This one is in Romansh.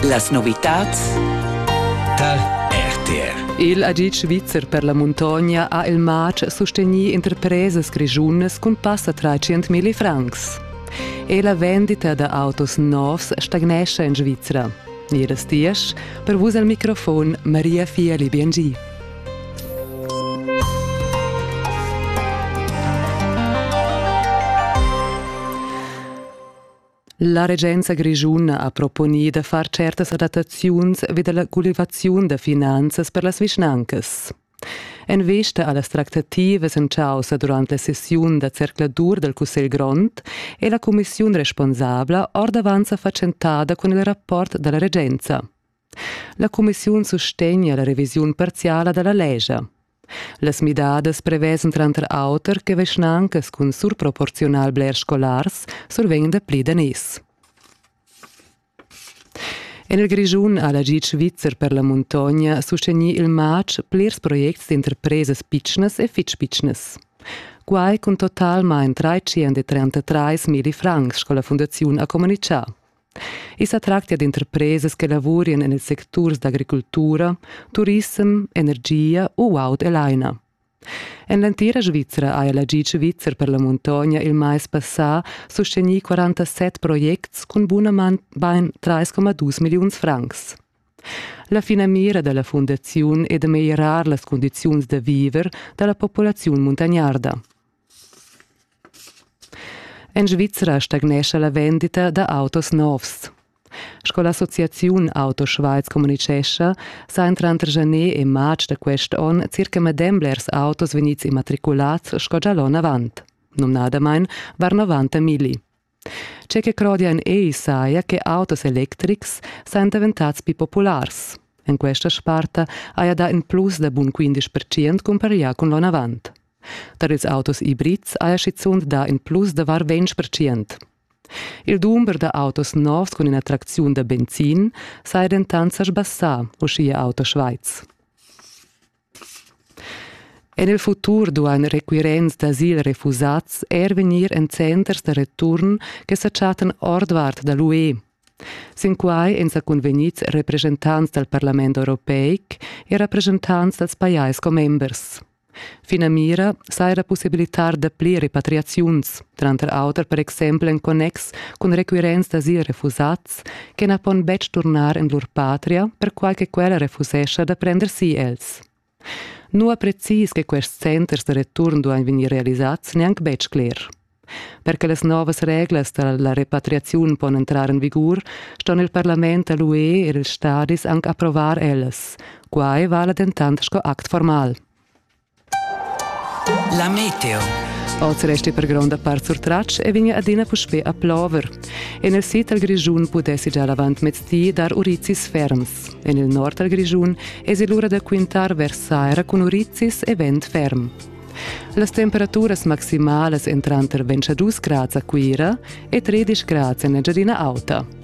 Las novitads tar RTR. Il agic svizzer per la muntogna ha il matg sustegnì interpresas grischunas cun passa tra 100.000 francs. E la vendita da autos novs stagnescha en Svizra. Iras Tiesch, per vus al microfon Maria Fieli Biengi. La regenza grischuna ha proponì da far certas adattaziuns vi da la gulivaziun da finanzas per las vischnancas. En vista a las tractativas en chaussa durant la sessiun da zercladur dal Cussegl grond è la cumissiun responsabla ordavant sa fatschentada cun il rapport da la regenza. La cumissiun sustegna la revisiun parziala da la lescha. Las midadas prevesen tranter auter che vischnancas cun surproporziunal blers scolars survegn dapli daners. En il Grischun ha la GIC Svizzer per la muntogna sustegnì il matg plirs projects d'interpresas pitschnas e fitg pitschnas. Quai cun totalmain 333 mili francs, sco la fundaziun ha communitgà. I sa tractia d'interpresas che lavurien en ils secturs d'agricultura, turissem, energia u aut e laina. En l'entira Svizra ha la GIC Svizzer per la muntogna il mais passà sustegnì 47 projects cun bunament bain 3,2 milliuns francs. La finamira da la fundaziun è da meglierar las condiziuns da viver da la populaziun muntagnarda. En Svizra stagnescha la vendita da autos novs. Sco l'associaziun Auto Schweiz communitgescha, sain tranter janer e marz da quest onn circa medem blers autos vegnids immatriculads sco gia l'onn avant. Numnadamain var 90 milli. Tge che crodia en ei saja che autos electrics sajan daventats pli populars. En questa sparta haja dà in plus da bun 15 percent cumpareglià cun l'onavant. Tar ils autos ibrids haja schizunt dà in plus da var 20 percent. Il dumber da autos novs cun in'attracziun da benzin saja dentant sa sbassà, uschia Auto Schweiz. En il futur duain requirents d'asil refusads er vegnir en centers da return che sa chattan ordvart da l'UE. Sin quai èn sa cunvegnids represchentants dal Parlament europeic e represchentants dals pajais commembers. Finamira saja possibilitar dapli repatriaziuns, tranter auter per exempel en connex cun requirents d'asil refusads che na pon betg turnar en lur patria, perquai che quella refusescha da prender si els. Nua precis che quests centers da return duain vegnir realisads neanc betg cler. Per che las novas reglas da la repatriaziun pon entrar en vigur, ston il parlament da l'UE e ils stadis anc approvar ellas. Quai vala dentant sco act formal. La meteo. Oz resti per gronda part surtratg e vegni adina puspè a plover. En il sid dal Grischun pudessi già l'avant mezdi dar urizis ferms. En il nord dal Grischun esi l'ura da quintar vers saira cun urizis e vent ferm. Las temperaturas maximalas entran tranter 22 grads a Cuira e 13 grads en Engiadina Auta.